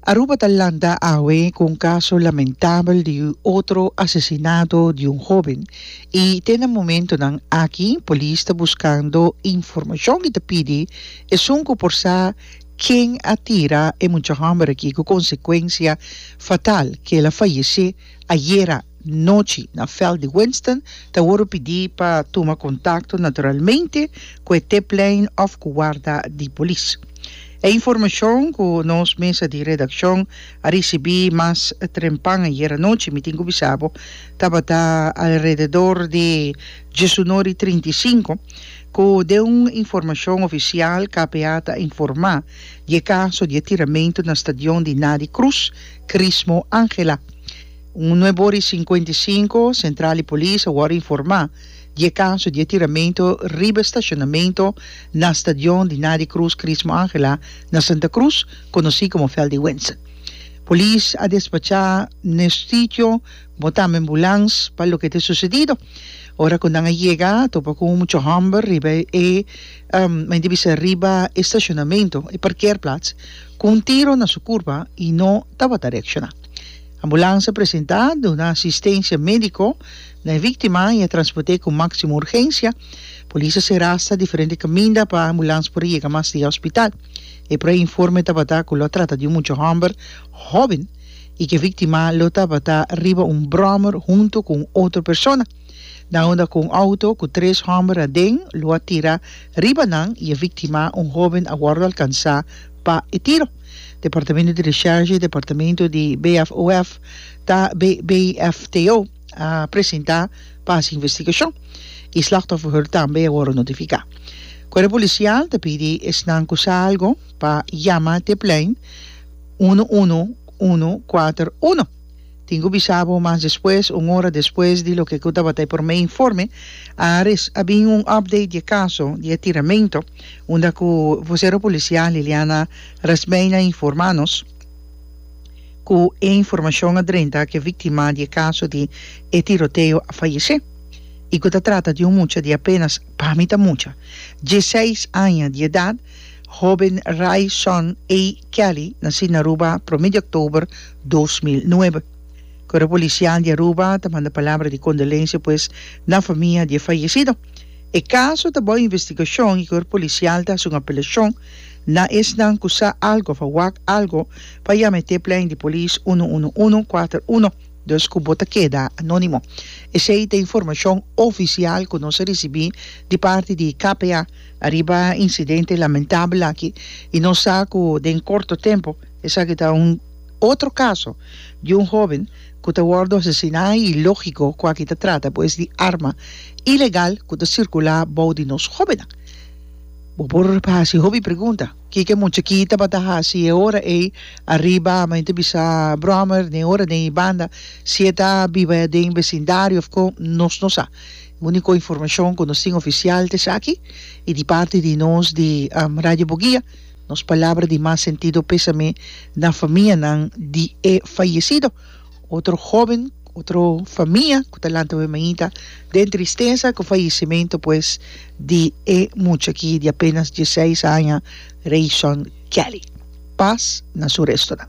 Aruba ta lanta awe cu un caso lamentabel di otro asesinato di un hoben y te na momentonan aki polis ta buscando informacion y ta pidi esun cu por sa ken a tira e mucha homber aki cu consecuencia fatal, kela fayece ayera. nochi na veld di Winston ta worde pidi pa tuma contacto naturalmente cu e T-plein of cu warda di polis. E informacion cu nos mesa di redaccion a ricibi mas trempan ayer anochi mi tin cu bisabo tabata alrededor di diesunor y trinta y cinco cu den un informacion oficial KPA ta informa di e caso di e tiramento na stadion di Nady Cruz, Chrismo Angela. Un nueve ora y cincuenta y cinco, Central di Polis a wòrdu informá di e kaso di e tiramentu riba e stashonamentu na stadion di Nady Cruz Chrismo Angela na Santa Cruz, konosí komo Veld di Wense. Polis a despachá na e sitio bo tambe ambulans pa loke ta susedido. Ora ku nan a yega a topa ku un mucha hòmber riba e mente bisa riba e stashonamentu, e parkeerplaats, ku un tiro na su kurpa i no tabata reakshoná. Ambulansa presentá duna asistensia médiko na e víktima i a transport'é ku máksimo urgensia. Polis a sera asta diferente kaminda pa ambulans por yega mas dia hospital. E proi informe tabata ku lo trata di un mucha hòmber hòben i ku e víktima lo tabata riba un bròmer huntu ku un otro persona. Nan unda ku un outo ku tres hòmber aden lo a tira riba nan i e víktima, un hòben, a wòrdu alkansá pa e tiro. Departamento di Recherche y Departamento di BFOF ta BFTO a presenta pa haci investigacion y slachtofferheur tambe a worde notifica. Cuerpo Policial ta pidi esnan cu sa algo pa yama te plein uno uno uno cuater uno. Tin cu bisa bo mas despues, un ora despues di loke cu tabata e prome informe, a rec, a bin un update di e caso di e tiramento, unda cu vocero policial Liliana Rasmeijn a informa nos cu e informacion a drenta cu e victima di e caso di e tiroteo a fayece y cu ta trata di un mucha di apenas, pa mi ta mucha, dieseis aña di edad. Hoben Ray Sean A. Kelly nací na Aruba prome di oktober dos mil nuebe. Koro polisial di Aruba ta manda palabra di kondolensia pues na famia di e fayesido. E kaso ta bou investigashon i kor polisial ta hasi un apelashon na esnan ku sa algo of a wak algo pa yama e tiplein di polis uno uno uno kuater uno, dus ku bo ta keda anónimo. Esei ta informashon ofisial ku nos a risibí di parti di KPA. Ariba incidente lamentable aki y nos sa cu den corto tempo esaki ta un otro caso di un hoben cu ta wordo asesina y logico cu aki ta trata pues di arma ilegal cu ta circula bou di nos hobennan. Bo por haci hopi pregunta, kico e muchaki tabata haci e ora ey ariba men ta bisa Brummer den ora den y banda si e ta biba den vecindario of con, nos no sa. Unico informacion cu nos tin oficial ta esaki y di parti di nos di Radio Buguia nos palabra di mas sentido pesame na famianan di e fayecido. Otro hoben, otro famia cu ta lanta wemainta den tristeza cu fayecimento pues di e mucha aki di apenas diesseis aña Rayson Kelly. Paz na su restonan.